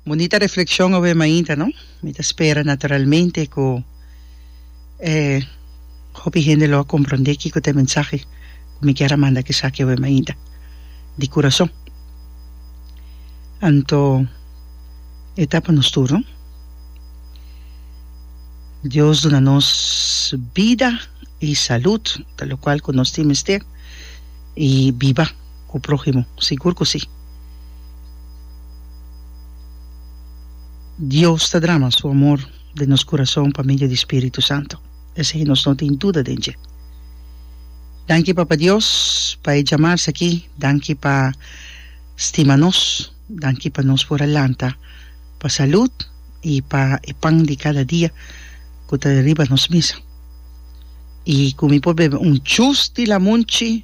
Bunita reflexion awe mainta no? Mi ta spera naturalmente cu e hopi hende lo a compronde kico ta e mensahe cu mi kier a manda kisaki awe mainta di curason. Anto e ta pa nos tur no. Dios duna nos bida y salud ta locual cu nos tin mester y biba. ku próhimo? Sigur ku sí! Dios ta drama Su amor den nos kurason pa medio di Spiritu Santu, esei nos no tin duda den dje. Danki Papa Dios pa e djamars aki, danki pa stima nos, danki pa nos por a lanta pa salud i pa e pan di kada dia ku ta riba nos mesa. I ku mi por bebe un chus di lamunchi,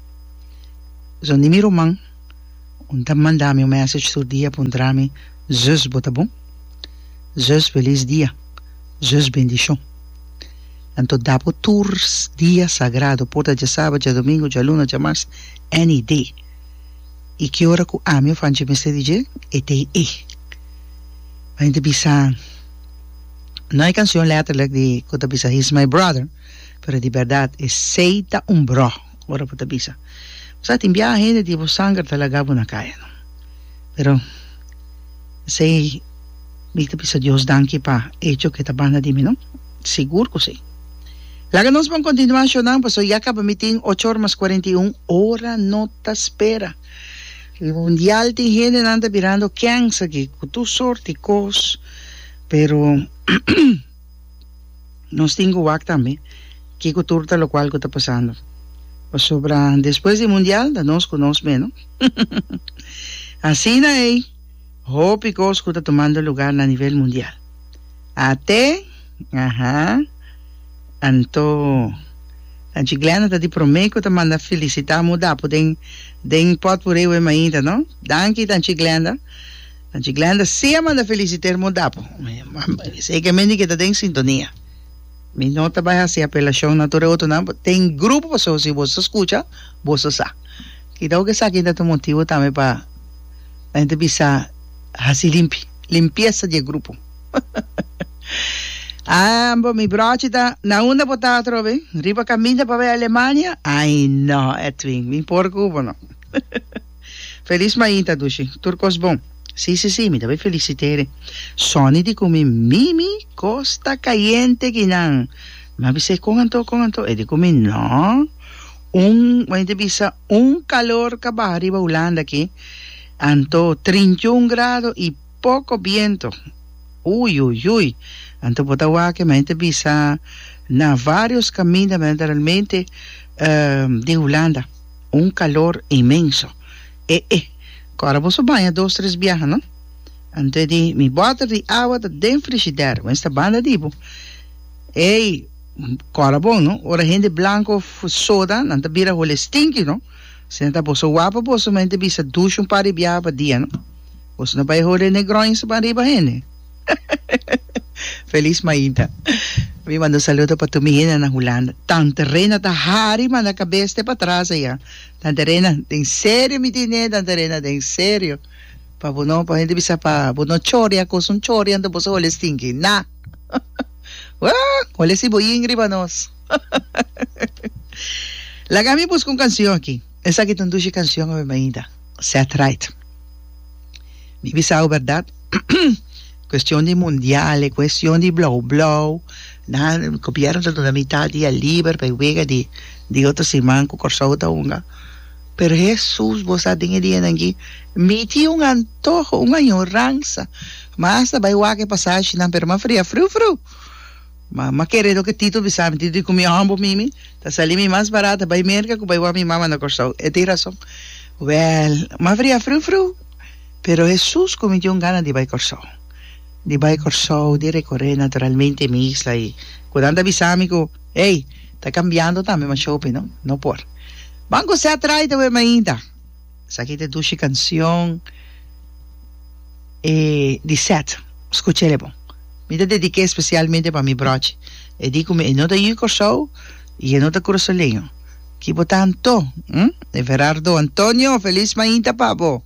Zo ni mi ruman, un ta manda mi un message tur dia puntra mi, Zus bo ta bon? Zus felis dia! Zus bendishon! Anto dapo tur dia sagrado, por ta dje sabat, dje domingo, dje luna, dje mars, any day. I ki ora ku ami of Angie mester di dje e day ei? Mi mester bisa, no e kanshon letterlijk di ku ta bisa He is my brother, pero di bèrdat esei ta un broh. Ora bo ta bisa, Bo sa tin biaha hende di bo sanger ta laga bo na kaya, no? Pero esei mi ta bisa Dios danki pa echo ku e ta banda di mi, no? Sigur ku si. Laga nos bon kontinuá shonando, pasobra ya kaba mi tin ocho ora mas kuarenta i un. Ora no ta spera. Riba un dial tin hendenan ta birando kènsa aki ku tur sort di kos, pero. Nos tin cu wak tambe kico tur ta locual cu ta pasando. Pasobra despues di Mundial ta nos cu nos meno. Asina ei hopi cos cu ta tomando lugar na nivel mundial. Ate, aha, anto Tanchi Glenda ta di prome cu ta manda felicita amo dapo den den potpourri we mainta, no? Danki Tanchi Glenda. Anchi Glenda sea manda feliciter mo dapo esey ke men di ke ta den sintonia mi no ta bai hasi apelashon na tur e otro nan den grupo paso si boso ta skucha boso sa kidao ke esaki ta motibu tambe pa pa hende bisa hasi limpi limpiesa di e grupo ah bo mi brochi ta na unda bo ta atrobe riba kaminda pa bai Alemania ay no Edwin mi por ku bo no Felis mainta dushi. Tur cos bon. Si si si mi ta bay felicitere Sonny di cu mi Mimi costa cayente ki nan mi a bis'e con anto con anto e di cu mi no un wen ta bisa un calor ca baha riba Hulanda aki anto trinta y un grado y poco biento ui ui ui anto bo ta wak mi a ta bisa na varios caminda mi a ta realmente di Hulanda. Un calor inmenso. E e. Cu ora boso baña dos tres biaha, no? Anto di mi bottle di awa ta den frigider, bo mester banda di bo. Ey, cora bon, no? Ora hende blanco of soda, nan ta bira hole stinky, no? Si nan ta boso wak pa boso mente bisa dush un par di biaha pa dia, no? Boso no bay hole Negroins banriba hende. Feliz mainta. Mi manda un saludo pa tur mi hende na Hulanda. Tante Rena ta hari manda cabes te patras aya. Tante Rena, den serio mi di ne Tante Rena, den serio. Pa bo no, pa hende bisa pa bo no choria cos un choria anto boso hole stinki. Na! Woo! Hole si bo ying riba nos. Laga mi busca un cancion aki. Esaki ta un dushi cancion awe mainta. Set right. Mi bisau berdad cuestion di mundial e cuestion di blauw blauw nan gobierno ta duna mitad dia liber pa e wega di di otro siman cu Corsou ta hunga pero Hesus bo sa den e dianan aki mi tin un antoho un añoransa mas ta bay wak e pasashi nan pero m'a fria friu friu Mama kere loke Tito bisami. Tito di cu mi hombo mimi ta sali mi mas barato bai Merca cu bai wak mi mama na Corsou. E tin rason. Wel, Maveri a friu friu, pero Hesus cu mi tin un gana di bai Corsou. Di bai Corsou, di recorre naturalmente mi isla y cu nan ta bisami cu, Ey, ta cambiando tambe, ma shopi no, no por. Ban cosé a trae ta web mainta. Esaki ta dushi cancion e di set scuchele bon. Mi ta dedica especialmente pa mi brochi. E di cu mi e no ta yu Corsou y e no ta Curasoleño. Ki bo ta Anto? Hm? Everardo Antonio, feliz mainta pa bo!